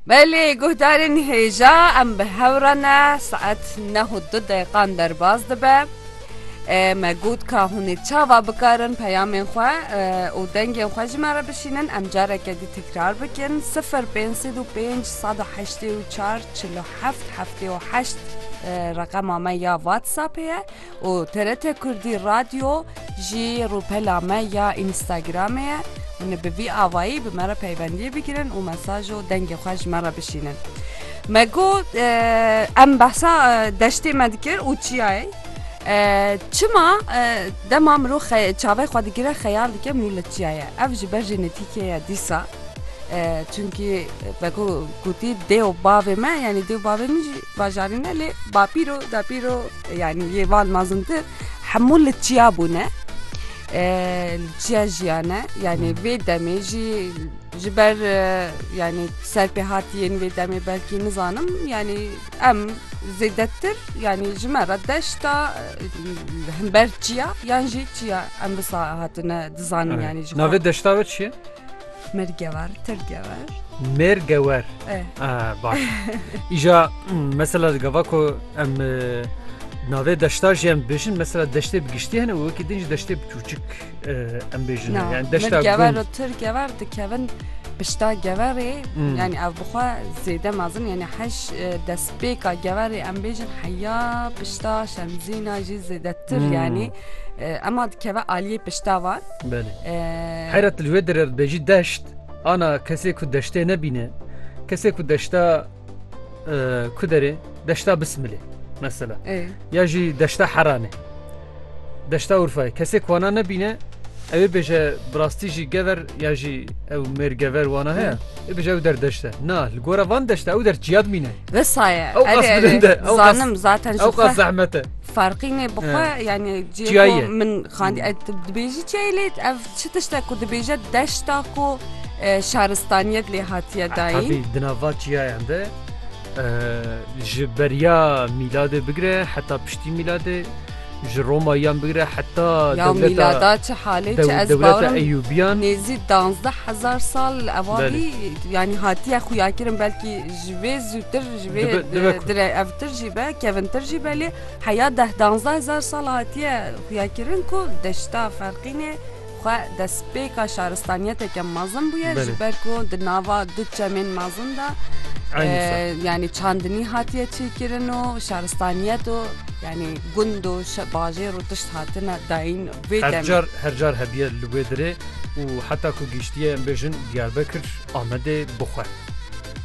Belê guhdarên hêja em bi hev re ne, saet neh û du deqan derbas dibe. Me got ka hûn ê çava bikarin peyamên xwe û dengên xwe ji me re bişînin, em careke dî tekrar bikin, sifir pênc sed û pênc sed û heştê û çar çil û heft heftê û heşt reqema me ya Whatsappê ye. û TRT Kurdî Radyo jî rûpela me ya Înstagramê ye. Hûn bi vî avayî bi me re peybendiyê bigirin û mesaj û dengê xwe ji me re bişînin. Me got em behsa deştê me dikir û çiyayê. Çima dema mirov çavê xwe digire xeyal dike mirov li çiya ye. Ev ji ber jênetîkê ye dîsa. Çimkî veko gotî dê û bavê me yanî dê û bavê min jî Bajarîne lê bapîro dapîro yanî yê van mezintir hemû li çiya bûne li çiya jiyane yanî vê demê jî ji ber yanî serpêhatiyên vê demê belkî nizanim yanî em zêdetir yanî ji me re deşta himber çiya yan jî çiya em wisa hatine dizanin yanî ji navê deşta we çi ye? Mêr gewer, tir gewer. Mêr gewer. E. Ah, baş. Îja hmm, mesela gava ku em e, navê deşta jî em bêjin mesela deştê bi giştî hene û wekî din jî deştê bi çûçik e, em bêjin. Na, Yani deşta mêr gewer gund. û tir gewer dikevin pişta geverê. Hmm. Yani ev bixwe zêde mezin yani heş e, destpêka geverê em bêjin heya pişta şemzîna jî zêdetir Hmm. yani. Ema dikeve aliyê pişta wan. Belê. Heyra tu li wê derê dibêjî deşt, ana kesê ku deştê nebîne, kesê ku deşta ku derê deşta bismilê mesela. Ya jî deşta heranê. Deşta Urfayê. Kesê ku wana nebîne ew ê bêje bi rastî jî gever ya jî ew mêr gever wana heye. Ê bêje ew der deşte. Na li gora van deşte ew der çiya dimîne. Vesaye. Ew qas bilinde. Zanim zaten ew qas zehmete. Farqînê bi xwe yanî ciyayê min xandî dibêjî çiyayê lê ev çi tişte ku dibêje deşta ku şaristaniyet lê hatiye dayîn di nava çiyayan de ji beriya mîladê bigire heta piştî mîladê ji Roma yan bigire heta mîlada çi halê çi ez bawirim Eyûbiyan nêzî danzdeh hezar sal evalî yanî hatiye xuyakirin belkî Ji vê zûtir ji vê Dibe- dibe ku- dire evtir jî be kevintir jî be lê heya deh danzdeh hezar sal hatiye xuyakirin ku deşta ferqînê xwe destpêka şaristaniyeteke mezin bûye Belê. ji ber ku di nava du çemên mezin de Eynî e, ser. yanî çandinî hatiye çêkirin û şaristaniyet û yanî gund û şe- bajêr û tişt hatine dayîn vê Her demê. car her car hebiye li wê dirê û heta ku gihiştiye em bêjin Diyarbekir, Amedê, Buxwe.